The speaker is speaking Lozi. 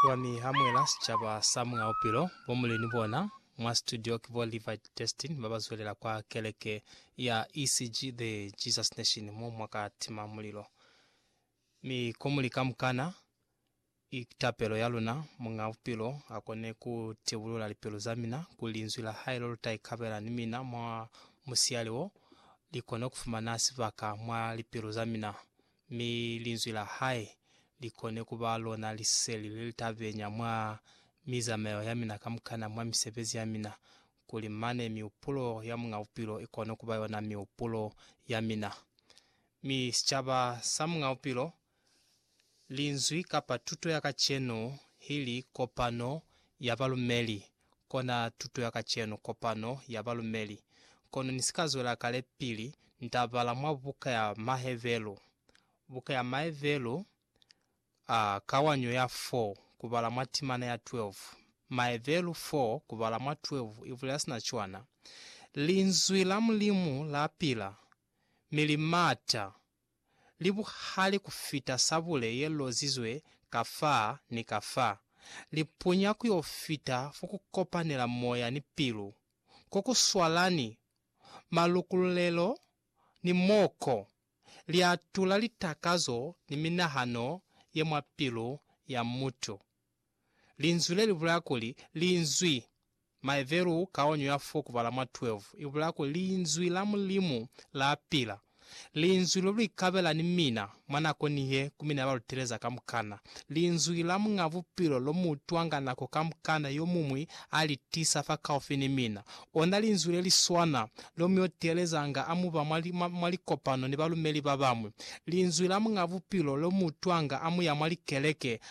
Kwani ha mwela sicaba sa Muñ'a Bupilo, bo Muleni bona mwa situdio ki bo Levi Destin ba ba zwelela kwa keleke ya ECG The Jesus Nation mo mwa ka tima mulilo. Mi ko muli kamukana, i tapelo ya luna Muñ'a Bupilo a kone ku tibulula lipilu za mina kuli Linzwi la hae lo lu ta ikabela ni mina mwa musiyali wo, li kone ku fumana sibaka mwa lipilu za mina. mi Linzwi la Hae li kone ku ba lona liseli le li ta benya mwa mizamayo ya mina kamukana, mwa misebezi ya mina, kuli mane mihupulo ya Muñ'a Bupilo i kone ku ba yona mihupulo ya mina. Mi sicaba sa Muñ'a Bupilo, Linzwi kapa tuto ya kacenu, hili kopano ya balumeli, kona tuto ya kacenu, kopano ya balumeli. Kono ni si ka zwela kale pili nta bala mwa buka ya Mahevelu, buka ya Maevelu, a, kawanyo ya 4, kubala mwa timana ya 12. Maevelu 4, kubala mwa 12, i bulela sina cwana, Linzwi la Mulimu la pila, mi li mata. li buhali ku fita sabule ye lozizwe ka fa ni ka fa, li punya ku yo fita fo ku kopanela moya ni pilu, ko ku swalani malukululelo ni mo ko li atula litakazo ni minahano ye mwa pilu ya mutu. Linzwi le li bulaya kuli, Linzwi. Maebelu kaonyo ya 4 kubala mwa 12 i bulaya kuli Linzwi la Mulimu la pila. Linzwi lo lu ikabela ni mina mwa nako nihe ku mina ya ba lu teleza kamukana. Linzwi la Muñ'a Bupilo lo mu utwanga nako kamukana yo muñwi a li tisa fakaufi ni mina. Ona Linzwi le li swana lo mu yo telezanga a mu ba mwa, mwa, mwa likopano ni balumeli ba bañwi. Linzwi la Muñ'a Bupilo lo mu utwanga a mu ya mwa likeleke